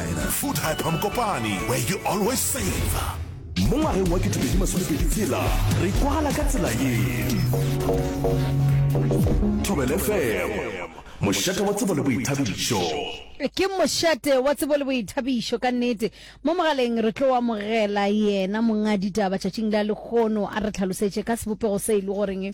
Food Hyper Mokopane, where you always save. Mo ngwageng wa 2020 tsela re kwala ka tsela ye. Thobele FM, mošate wa tsebo le boithabišo. ke mošate wa tsebo le boithabišo ka nnete mo mogaleng re tlo amogela yena monga ditaba tšatšing la lekgono a re tlhalosetše ka sebopego se e le goreng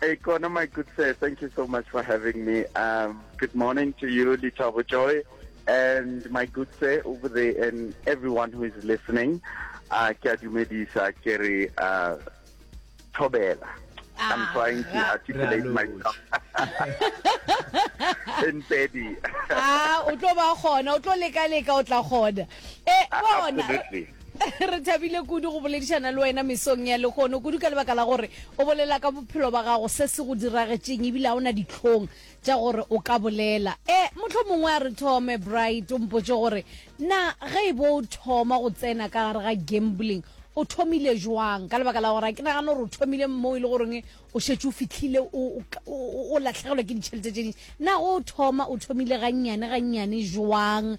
Hey Kona, my good sir, thank you so much for having me. Um, good morning to you, Litabo Joy, and my good sir over there, and everyone who is listening. Uh, ke a dumedisa ke re uh, thobela. I'm Ah, trying to ra- articulate Raloki. myself in pedi. a o tlo ba gona o tlo leka leka o tla gona e bona re thabile kudu go boledišana le wena mesong ya legono kudu ka lebaka la gore o bolela ka bophelo ba gago se se go diragetseng ebile ga o na ditlhong tša gore o ka bolela e eh, motlho mongwe a re thome bright o mpotse gore na ge e bo o thoma go tsena ka gare ga gambling o thomile jwang ka lebaka la gore ke nagana gore o thomile mo e le goreng o shetse o fitlhile o latlhegelwa ke ditšhelete tse dintsi na go thoma o thomile gannyane gannyane jwang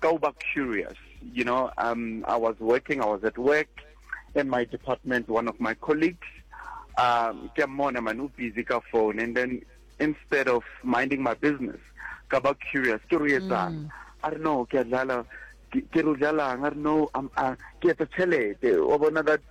Go back curious. You know, um, I was working, I was at work in my department, one of my colleagues, um, ke mona manu busy ka phone and then instead of minding my business, ka ba curious, ke re etsang. Mm. I don't know, ke dlala ke re dlalang, I don't know, I'm uh, ke etsa chelete. O bona that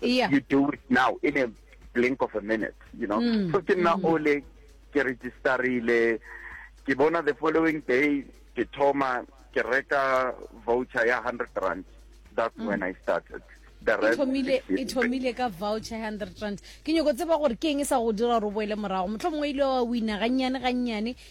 yeah. you do it now in a blink of a minute you know mm. so ke nna mm. ole ke registerile ke bona the following day ke thoma ke reka voucher ya 100 rand that's mm. when i started e thomile ka voucher hundred rand ke nyoko tseba gore ke eng e sa go dira gore o boele morago motlho mongwe ile wa wina gannyane gannyane